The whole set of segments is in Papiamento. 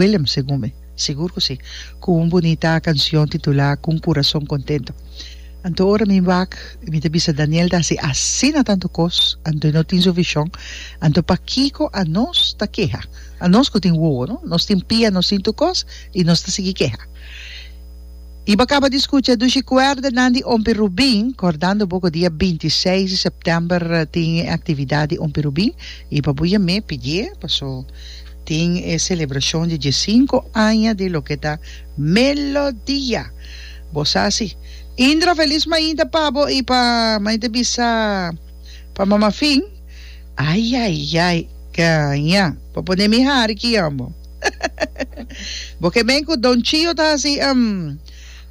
Willem, segun mi. Sigur ku si. Ku un bunita kansion titulá Ku un kurason kontentu. Anto ora mi wak i mi ta bisa Daniel ta hasi asina tantu kos, anto i no tin su vishon, anto pakiko anos ta keha? Anos ku tin wowo, no? Nos tin pia, nos tin tur kos, i nos ta sigui keha. I bo a kaba di skucha dushi kuerdanan di Ompi Rubin, kordando bo ku dia binti i seis di sèptèmber tin e aktividat di Ompi Rubin, i pa bu yam'é pidié, paso. Tin e celebracion di diescinco aña di loke ta Melodia. Bo sa si. Indra, felis mainta pabo y pa maite bisa pa mama fin. Ay ay ay. Gaña. Pa pone mi hari ki yambo. Bo ke men cu Don Chio ta hasi em.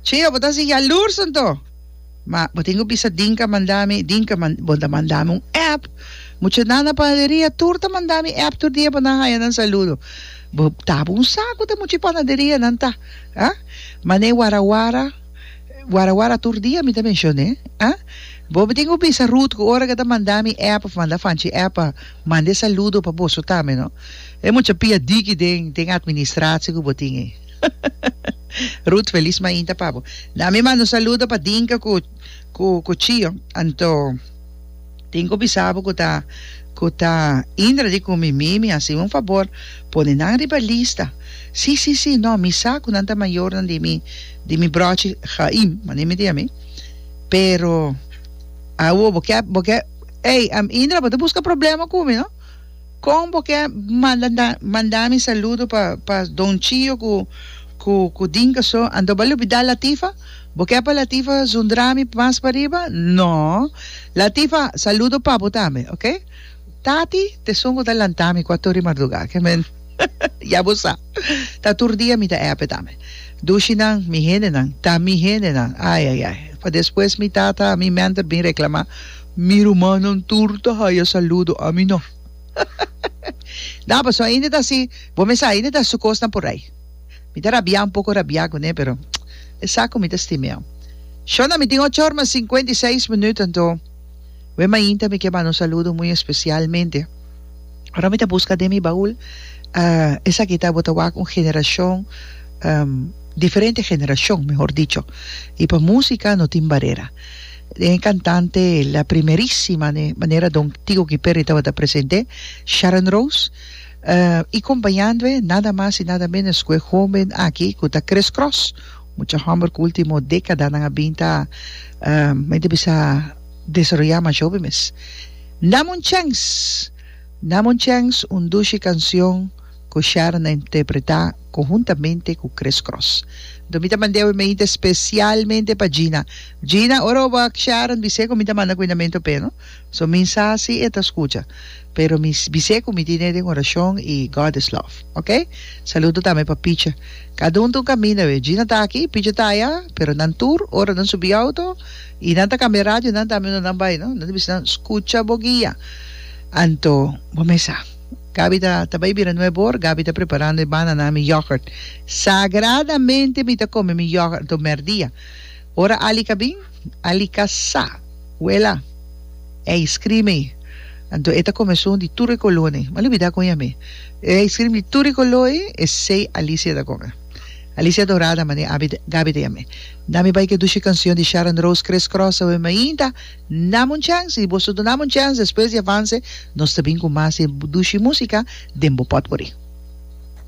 Chio bo ta hasi yalurs anto. Ma bo tin ku bisa Dinka a manda mi, Dinka a manda, bo ta manda mi un app. Mucha nan na panaderia tur ta manda mi app tur dia pa nan haña nan saludo. Bo ta bunsa ku ta mucha e panaderia nan ta, a? Mané warawara, warawara tur dia mi ta menshoné, a? Bo tin ku bisa Ruth ku ora ke ta manda mi app òf manda Fanchi app a manda e saludo pa boso tambe, no? E mucha piadiki den den administrasie ku bo tin ei. Ruth, feliz mainta pa bo. Na mi manda un saludo pa Dinka cu, cu, cu Chio. Anto tin cu bisa bo cu ta, cu ta Indra di cu Mimi, mi hacibo un fabor, pone nan riba lista. Si, si, si, no, mi sa cu nan ta mayornan di mi, di mi brochi Chaim, mane mi di ami. Pero, awo, bo ke, bo ke, ey, am, Indra, bo ta busca problema cu mi, no? Kon bo ke manda mi saludo pa pa Don Chio ku ku ku Dinka so anto bo a lubida Latifa? Bo ke pa Latifa zundra mi mas pa riba? No Latifa saludo pa bo tambe oke Tati tesun ku ta lanta mi kuator di marduga ke men ya bo sa ta tur dia mi ta epe tambe Dushi nan mi hendenan ta mi hendenan ayayay pa despues mi tata mi menter bin reklama Mi rumannan tur ta haya saludo ami no. No, paso ainda ta si, bo mesa ainda ta su cosnan por ai. Mi ta rabia un poco rabia cune pero e sa cu mi ta stimeo. Shona mi tin ochor mas cincuenta y seis minuut anto we mainta mi ke bana un saludo muy especial mente. Ora mi ta busca den mi baul ah esaki ta bo ta wak un generacion diferente generacion mehor dicho y pa musica no tin barera. Den e cantante la primerísima ne manera don Tico Guiperri tabata presente Sharon Rose uh y compañandoe nada mas y nada menos cu e homen aki cu ta Chris Cross mucha homber cu ultimo decadanan a bin ta uh men ta bisa desaroya mas joven mes Dame un chance Dame un chance un dushi cancion ku Sharon a interpretá konhuntamente ku Kris Kroes. Dor mi ta mand'é awe mainta spesialmente pa Gina. Gina, ora bo wak Sharon bis'é ku mi ta manda kuinamentu p'e no. So mi sa si e ta skucha. Pero mi bis'é ku mi tin'é den orashon i God is love. Ok? Saludo tambe pa Picha. Kada un ta un kaminda awe. Gina ta aki, Picha ta aya, pero nan tur ora nan subi outo i nan ta kambia radio nan tambe unda nan bai no. Nan ta bisa nan skucha bo guia. Anto bo mesa. Gabi ta ta bai bira nuevo hoor Gabi ta preparando e banana mi yoghurt sagradamente mi ta come mi yoghurt anto merdia ora Alica bin Alica sa wela ice cream ei anto e ta come esun di tur e color ei m'a lubida con yami e ice cream di tur e color ei esey Alicia ta come Alicia dorada mane Abi Gabi ta yami dami bai ke dushi cancion di Sharon Rose crisscross awe mainta Dame un chance, si boso duname un chance despues di avance nos ta bin cu mas e dushi musica den bo potpourri.